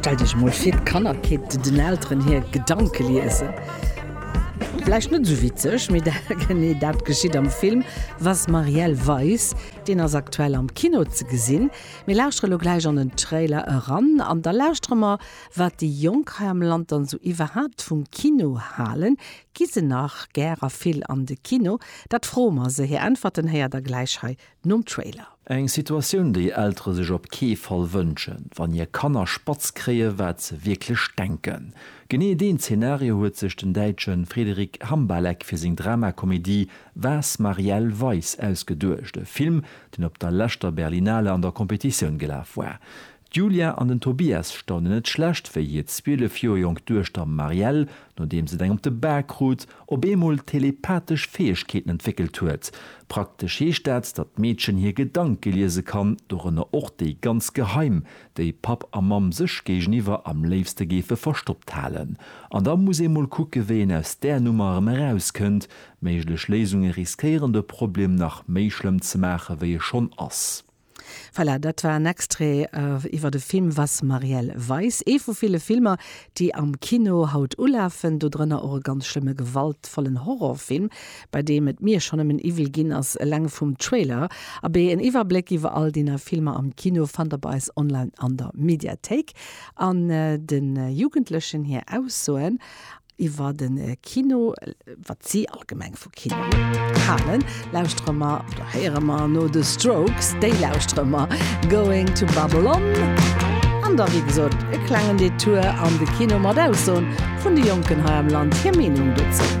Stellt iech emol vir, d'Kanner kéinten den Elteren hir Gedanke liesen. Vläicht net esou witzeg, mee genee dat geschitt am Film Was Marielle weiß. Deen ass aktuell am Kino ze gesinn. Mir lauschtere lo gläich an den Trailer eran an da lauschtere mer, wat déi Jonk hei am Land dann esou iwwerhaapt vum Kino halen. Gi se nach gär a vill an de Kino? Dat froe mer se. Hir Äntwerten héiert der gläich hei nom Trailer. Eng Situatioun, déi Eltere sech op kee Fall wënschen, wann hir Kanner spatz kréien, wat se wierklech denken. Genee deen Zeenario huet sech den Däitsche Frederic Hambalek fir seng Dramakomedie Was Marielle Weiss ausgeduecht, e Film, deen op der leschter Berlinale an der Competitioun gelaf war. D'Julia an den Tobias staunen net schlecht, wéi hir 12 Joer jonk Duechter Marielle, nodeems et eng op de Bak krut, op eemol telepathesch Fäegkeeten entwéckelt huet. Praktesch heescht dat, datt d'Meedchen hir Gedanke liese kann, dorënner och déi ganz geheim, déi Papp a Mamm sech géigeniwwer am léifste géife verstoppt halen. An da muss ee mol kucke wéi een aus där Nummer erëm erauskënnt. Méiglech Léisunge riskéieren de Problem nach méi schlëmm ze maache wéi e schonn ass. Voilà, dat war en Extrait iwwer de Film Was Marielle weiß, ee vu ville Filmer, déi am Kino haut ulafen, dodrënner och e ganz schlëmme gewaltvollen Horrorfilm, bei deem et mir schonn nëmmen iwwel ginn ass, eleng vum Trailer. Abee, en Iwwerbléck iwwer all déi nei Filmer am Kino fannt der bei eis online an der Mediathéik. An de Jugendlechen hir Aussoen Iwwer de Kino, wat si allgemeng vu Kino halen, lauschtere mer oder héiere mer no de Strokes. Déi lauschtere mer Going to Babylon an da wéi gesot e klengen Detour an de Kino mat Aussoen vun de Jonken hei am Land, hir Meenung dozou.